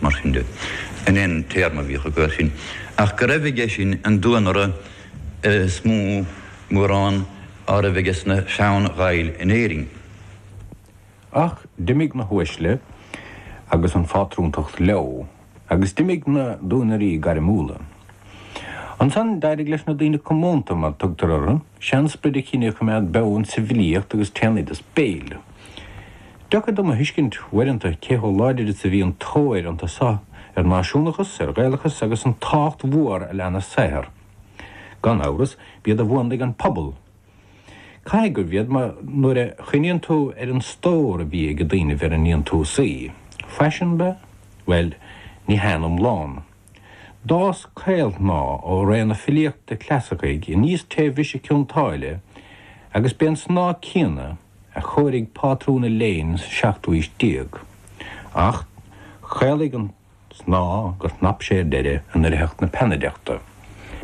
mar sin de. An aon téarma a bhíodh acu air sin ach go raibh aige sin an duanaire is mó, mórán, á raibh aige sna sean-Ghaill in Éirinn. Ach d'imigh na huaisle agus an phátrúntacht leo, agus d'imigh na duanairí gairmiúla. Ansan d'éirigh leis na daoine comónta, mar a tugtar orthu, seansprid an chine a choimeád beo insa bhfilíocht agus téann iad as béil. Deacair dom a thuiscint uaireanta cé chomh láidir is a bhí an tóir iontu so ar náisiúnachas, ar Ghaelachas agus an tábhacht mhór a lean a saothar. Gan amhras, b'iad a mhúnlaigh an pobal. Caithfidh gurbh iad, mar nuair a chuimhníonn tú ar an stór a bhí aige daoinibh ar a ndéantúsaí, fashionable? bhuel, ní haon iomlán. D'fhás caolshnáth ó ré na filíochta clasaicí aníos tré bhriseadh Cionn tSáile agus b'é an snáth céanna, a chóirigh pátrún an léinn sa seachtú haois déag, ach chaolaigh an snáth gur shnap sé ar deireadh i ndoircheacht na peannaideachta.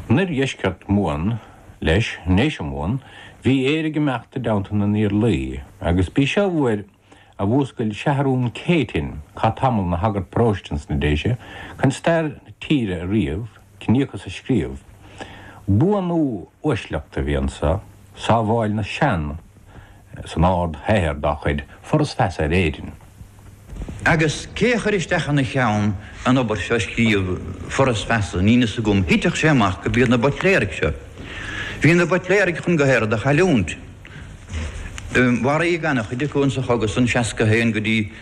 In oirdheisceart Mumhan, leis, i nDéise Mumhan, bhí Éire ag imeacht i dteannta na nIarlaí, agus b'í seo an uair a mhúscail Seathrún Céitinn, a chaith tamall ina shagart paróiste ins na Déise, chun stair na tíre a ríomh. ciníochas a scríobh. Buanú uaisleachta a bhí anseo, sábháil na sean san ard-shaothar dá chuid, Foras Feasa ar Éirinn. Agus cé a chuir isteach ina cheann an obair seo a scríobh, Foras Feasa? Níl fhios agam. Thitfeadh sé amach gurb iad na Buitléaraigh seo. Bhí na Buitléaraigh chun gach aon rud a chailliúint. Maraíodh an-chuid acu in sa chogadh san, 61 go dtí.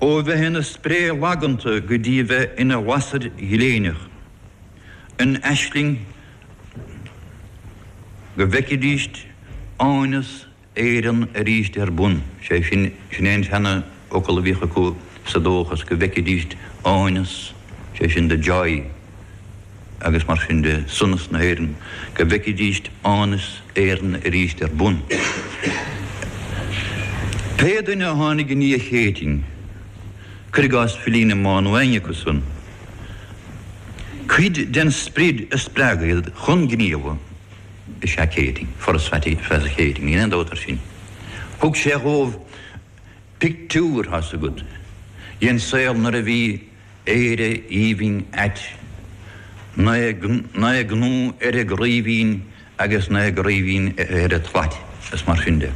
ó bheith ina spré laganta go dtí a bheith ina lasair ghléineach, in aisling go bhfeicfidís áineas Éireann arís ar bun, sé sin, sin é an seanfhocal a bhíodh acu sa dóchas go bhfeicfidís áineas, sé sin the joy. agus mar sin de, sonas na hÉireann, go bhfeicfidíst áineas Éireann aríst ar bun. Pé duine a tháinig i ndiaidh Chéitinn, cuir i gcás filí na Mumhan nó éinne acu san, cuid den sprid a spreag iad chun gníomha is ea Céitinn, Foras Feasa Chéitinn, níl aon dabht air sin. Thug sé dhóibh pictiúr, thá's agat, dhen saol nuair a bhí. Éire aoibhinn ait. Naoi gcnó ar an gcraoibhín agus naoi gcraoibhín ar an tslait, is mar sin de.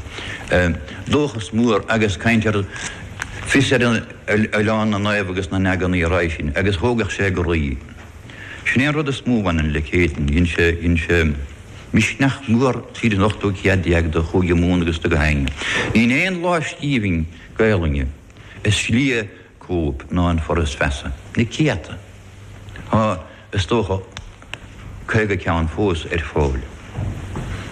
Dóchas mór agus caint ar fios ar oileán na naomh agus na n-eagnaí roimhe sin, agus thógfadh sé do chroí. Sin é an rud is mó a bhaineann le Céitinn. Dhein sé, dhein sé misneach mór tríd an ochtú céad déag do Chúige Mumhan agus do gach éinne. Níl aon lámhscríbhinn Gaelainne is lia cóip ná an Foras Feasa. Na céadta. Tá, is dócha, caoga ceann fós ar fáil.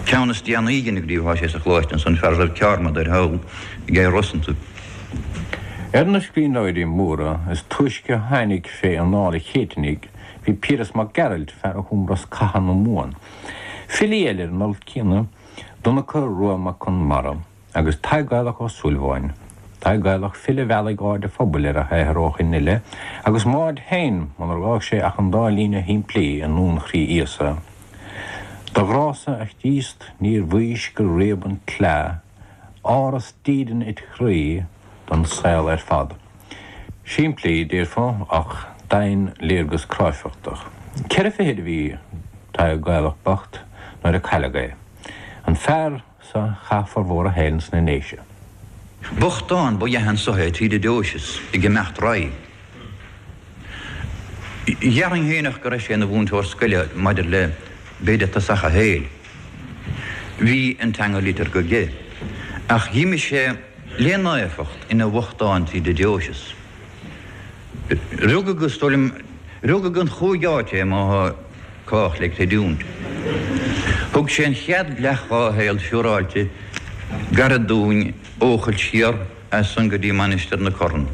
Ceann is déanaí dena scríobhadh tá sé sa Choláiste ansan, fear roimh Ceármada ar thaobh Chill Rosanta. Ar na scríbhneoirí móra is túisce a tháinig fé anáil an Chéitinnigh bhí Piaras Mac Gearailt, fear a chum Rosc Catha na Mumhan. Filí eile ar an alt céanna, Donncha Rua Mac Conmara. agus Tadhg Gaelach Ó Súilleabháin, Tadhg Gaelach file a mheall aird an phobail ar a shaothar ó shoin i leith, agus Máird féin munar fhág sé ach an dá líne shimplí i nDuan Chroí Íosa, Do ghrása, a Chríost, níor mhaís gur réab an tsleá, áras dídean it chroí don saol ar fad. Simplí, déarfá, ach domhainléargas cráifeachta. Ceithre fichid a bhí Tadhg Gaelach bocht nuair a cailleadh é. An fear so chaith formhór a shaoil sna nDéise. Bochtán ba ea é anso tríd an deoiseas ag imeacht roimhe. Déarfainn féineach go raibh sé ina mhúinteoir scoile maidir le b'fhéidir tosach a shaoil. Bhí an teanga liteartha aige, ach dh'imigh sé le naofacht ina bhochtán tríd an deoiseas. Rugadh agus, is dóigh liom, rugadh i gcúig áit é, má. Cách le creidiúint. Thug sé an chéad leath dhá shaol siúráilte gairid dúinn, Eochaill siar as san go dtí Mainistir na Corann.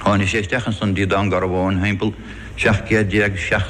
Tháinig sé isteach ansan dtí Dún Garbhán thimpeall 17 gcéad